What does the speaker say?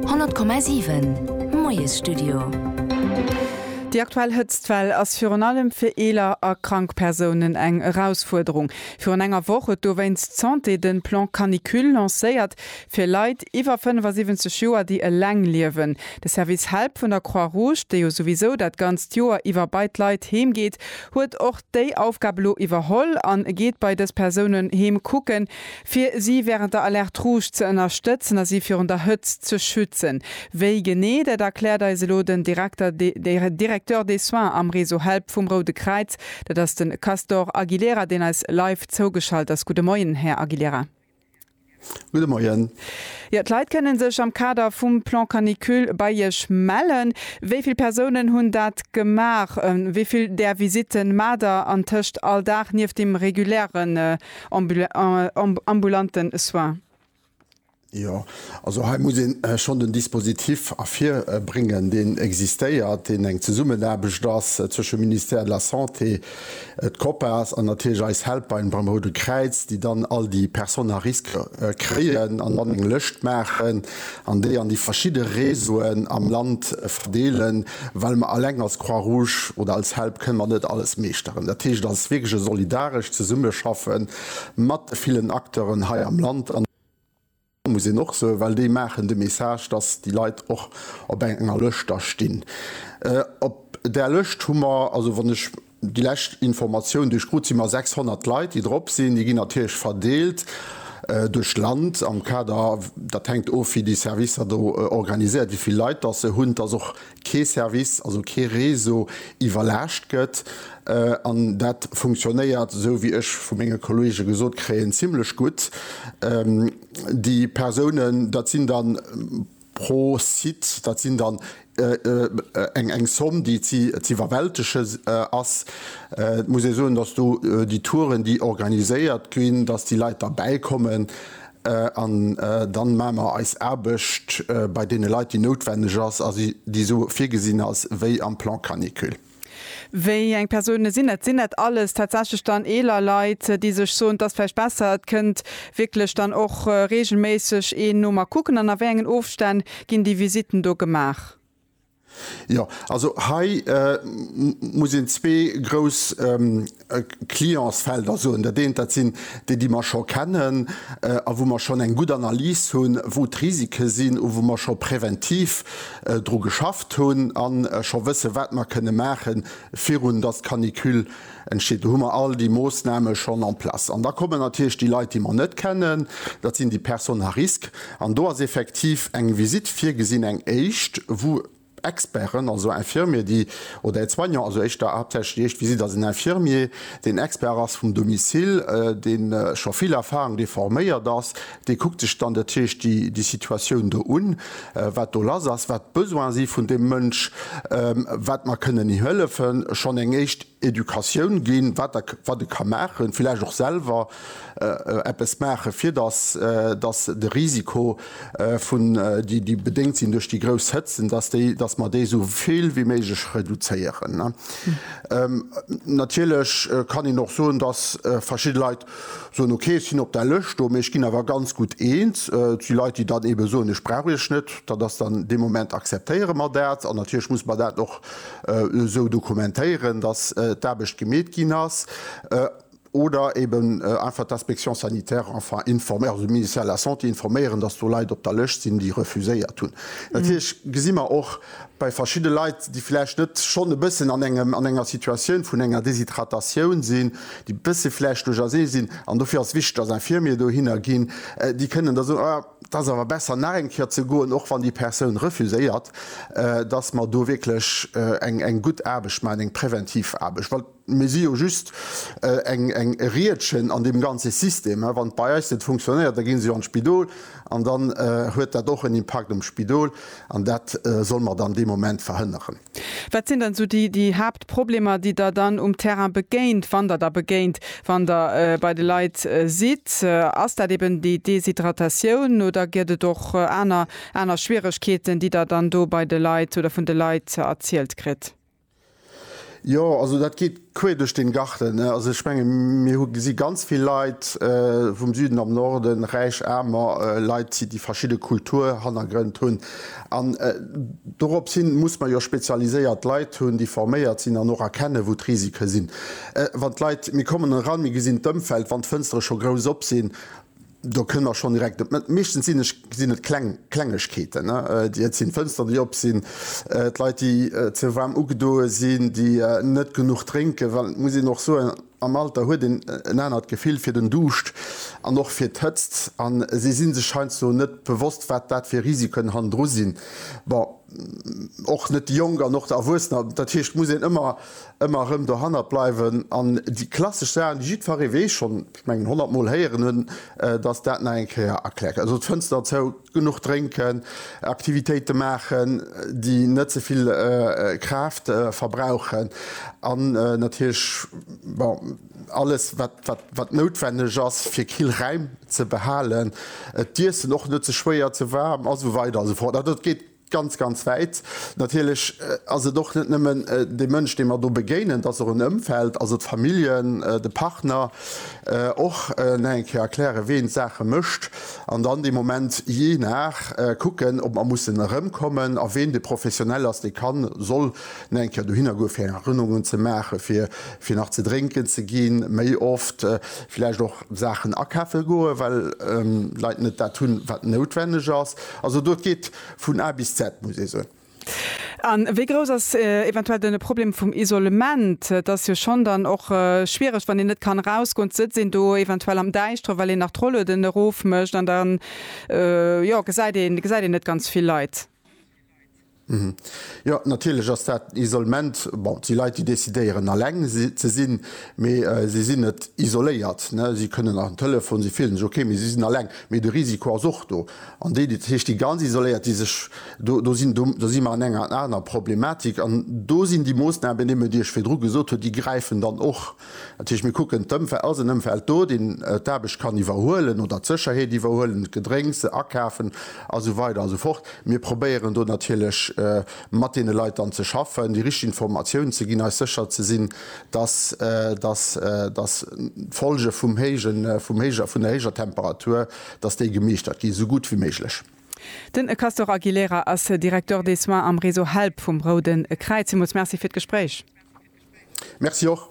100,7 Moiesstudio Déi aktuell Hëtztwell ass virun allem fir eeler a krank Persounen eng Erausfuerderung. Virun enger Woch huet dowéinst d'Santé de Plan Canicule lancéiert fir Leit iwwer 75 Joer, déi eleng liewen. De Service Help vun der Croix Rouge, dee jo souwisou dat ganzt Joer iwwer bei d'Leit heem geet, huet och déi Aufgab elo iwwerholl a geet bei dës Persounen heem kucken, Fir si wärend der Alerte Rouge ze ënnerstëtzen a si virun der Hëtzt ze schützen. Wéi genee, dat erkläert eis elo den Direkter Directeur des Soins am Réseau Help vum Roude Kräiz. Dat ass de Castor Aguilera, deen eis live zougeschalt ass. Gudde Moien, Här Aguilera. Gudde Moien. Jo, d'Leit kënnen sech am Kader vum Plan Canicule bei Iech mellen. Wéi vill Persounen hunn dat gemaach? Wéi vill där Visitten maacht Der antëscht all Dag, nieft dem reguläre ambulanten Soins. Jo, also hei muss een schonn den Dispositif ervirbréngen, deen existéiert, deen eng Zesummenaarbecht ass zwëschem Ministère de la Santé, d'Copas an natierlech eis Helpline beim Roude Kräiz, déi dann all déi Personnes à risques kréien an dann eng Lëscht maachen. an déi an déi verschidde Réseauen am Land verdeelen, well mer eleng als Croix Rouge oder als Help kënne mer net alles meeschteren. Dat heescht, et ass wierklech e solidarescht Zesummeschaffen mat de villen Acteuren hei am Land an dat muss een och soen, well déi maachen de Message, dass déi Leit och op enger Lëscht da stinn. Op där Lëscht hu mer, also wann ech Déi lescht Informatioun, duerch krut si mer 600 Leit, déi drop sinn. Déi ginn natierlech verdeelt duerch d'Land am Kader, dat hänkt of, wéi déi Servicer do organiséiert, wéi vill Leit datt se hunn, datt och kee Service, also kee Réseau iwwerlaascht gëtt. An dat funktionéiert, esou wéi ech vu menge Kollege gesot kréien, zimlech gutt. Déi Persounen, dat sinn da. pro Site, dat sinn dann eng Somme, déi z'iwwerwältegen ass. Et muss ee soen, datt do déi Touren, déi organiséiert ginn, datt déi Leit da bäikommen an dann maache mer eis Aarbecht bei deene Leit, déi noutwenneg ass a déi esou virgesinn ass wéi am Plan canicule. Wéi eng Persounen sinn dat? Sinn dat alles tatsächlech dann eeler Leit, déi sech soen, et ass vläicht besser, et kënnt wierklech dann och reegelméisseg een no mer kucken? An a wéi engen Ofstänn ginn déi Visitten do gemaach? Jo, also hei muss een zwee grouss Clientsfelder soen. Dat eent, dat sinn déi, déi mer scho kennen a wou mer schonn eng gutt Analys hunn, wou d'Risike sinn a wou mer scho präventiv dru geschafft hunn a scho wëssen, wat mer kënne maachen, virun datt d'Canicule entsteet. Do hu mer all déi Moossname schonn en place. An da kommen natierlech déi Leit, déi mer net kennen, dat sinn déi Personnes à risques. An do ass effektiv eng Visitt virgesinn, eng éischt, wou Experten, also Infirmier, déi, oder Aide-soignant, also éischter, haaptsächlech déi éischt Visitt ass en Infirmier, deen Expert ass vum Domicile, deen scho vill Erfahrung, dee forméiert ass, dee kuckt sech dann, dat heescht, déi, déi Situatioun do un, wat do lass ass, wat d'Besoin si vun deem Mënsch, wat mer kënnen him hëllefen, schonn eng éischt Educatioun ginn, wat e ka maachen, villäicht och selwer, eppes maachen, fir dass dass de Risiko vun déi bedéngt sinn duerch déi grouss Hëtzen, dass déi dass mer dee sou vill wéi méiglech reduzéieren. Natierlech kann een och soen, dass verschidde Leit soen, okay ech sinn op där Lëscht do, mee ech ginn awer ganz gutt eens. Et si Leit, déi dann eebe soen, ech brauch Iech net. Dat ass dann dee Moment akzeptéiere mer dat an natierlech musse mer dat och esou dokumentéieren, dass d'Aarbecht gemeet ginn ass. oder eben einfach d'Inspection sanitaire enfin informéieren, also de Ministère de la Santé informéieren, dass do Leit op der Lëscht sinn, déi refuséiert hunn. Natierlech gesi mer och bei verschidde Leit, déi vläicht net schonn e bëssen an engem, an enger Situatioun vun enger Deshydratatioun sinn, déi e bësse vläicht duerch ersee sinn, an dofir ass et wichteg, dass Infirmier dohinner ginn, déi kënnen da soen, ah, et ass awer besser nach eng Kéier ze goen, och wann déi Persoun refuséiert, dass mer do wierklech eng gutt Aarbecht maachen, eng präventiv Aarbecht. Mir si jo just eng Riedchen an deem ganze System. Wann et bei eis net funktionéiert, da gi se jo an d'Spidol an dann huet dat och en Impakt um Spidol an dat solle mer dann dee Moment verhënneren. Wat sinn dann esou déi Haaptproblemer, déi Der dann um Terrain begéint, wann Der der begéint, wann Der bei de Leit sidd? Ass dat eben déi Deshydratatioun oder gëtt et och aner Schwieregkeeten, déi Der dann do bei de Leit oder vun de Leit erzielt kritt? Jo, also dat geet quer duerch den Garten. Also ech menge mir hu gesi ganz vill Leit vum Süden am Norden, räich, aarmer Leit si, déi verschidde Kulturhannergrënn hunn. An dorops hin muss mer jo spezialiséiert Leit hunn, déi forméiert sinn an och erkennen, wou d'Risike sinn. Wann d'Leit, mir kommen eran, mir gesinn d'Ëmfeld, wann d'Fënstere scho grouss op sinn, Do kënne mer schonn direkt op d'Mëtt. Meeschtens sinn ech, sinn et kleng Klengegkeeten, ne? Déi, et sinn d'Fënsteren, déi op sinn, d'Leit, déi ze waarm ugedoe sinn, déi net genuch drénken, well et muss een och soen, am Alter huet een en anert Gefill fir den Duuscht an och fir d'Hëtzt. An si si sech heiansdo net bewosst, wat dat fir Risiken hannendru sinn. Bon, och net déi Jonk an och d'Erwuessener. Dat heescht, et muss een ëmmer, ëmmer erëm dohannert bleiwen. An déi klassesch Saachen, déi jiddferree weess schonn, ech mengen 100 mol héieren hunn, dass dat nach eng Kéier erklärt, also d'Fënster zou, genuch drénken, Aktivitéite maachen, déi net ze vill Kraaft verbrauchen an natierlech, bon, alles wat noutwenneg ass fir kill Räim ze behalen, d'Iessen och net ze schwéier, ze waarm a sou weider a sou fort. Also dat geet Ganz, ganz wäit. Natierlech ass et och net nëmmen de Mënsch, deem mer do begéinen, et ass och en Ëmfeld, also d'Familljen, de Partner, och nach eng Kéier erklären, wien d'Saache mécht an dann dee Moment jee nach kucken, ob mer mussen erëmkommen a wien de Professionell ass, dee kann, soll nach eng Kéier dohinner goen, fir Erënnerungen ze maachen, fir nach ze drénken ze ginn, méi oft, villäicht och. Saachen akafe goe well Leit net dat hunn, wat noutwenneg ass. Also do, et geet vun A bis Z, muss ee soen. A wéi grouss ass eventuell dann de Problem vum Isolement? Et ass jo schonn dann och schwiereg, wann een net kann erausgoen, sëtzt een do eventuell am Däischtere well een nach d'Rollueden erofmécht an da, jo, gesäit een net ganz vill Leit. Jo, natierlech ass dat Isolement. Bon, et si Leit, déi decidéieren, eleng ze sinn, mee si sinn net isoléiert. Si kënnen an den Telefon, si fillen sech ok, mee si sinn eleng. Mee de Risiko ass och do. An déi, dat heescht déi ganz Isoléiert, déi sech, do, do sinn, do si mer an enger aner Problematik. An do sinn déi Moossnamen, déi Mme Diesch virdru gesot huet, déi gräifen dann och. Dat heescht, mir kucken d'Ëmfeld, ass en Ëmfeld do, deen d'Aarbecht kann iwwerhuelen oder d'Sécherheet iwwerhuelen, d'Gedrénks akafen a sou weider a sou fort. Mir probéieren do natierlech mat deene Leit dann ze schaffen, déi richteg Informatiounen ze ginn, eis sécher ze sinn, dass d'Folge vum héijen, vun der héijer Temperatur, dass déi gemeeschtert ginn, esou gutt wéi méiglech. Den Castor Aguilera ass Directeur des soins am Réseau Help vum Roude Kräiz. Villmools Merci fir d'Gespréich. Merci och.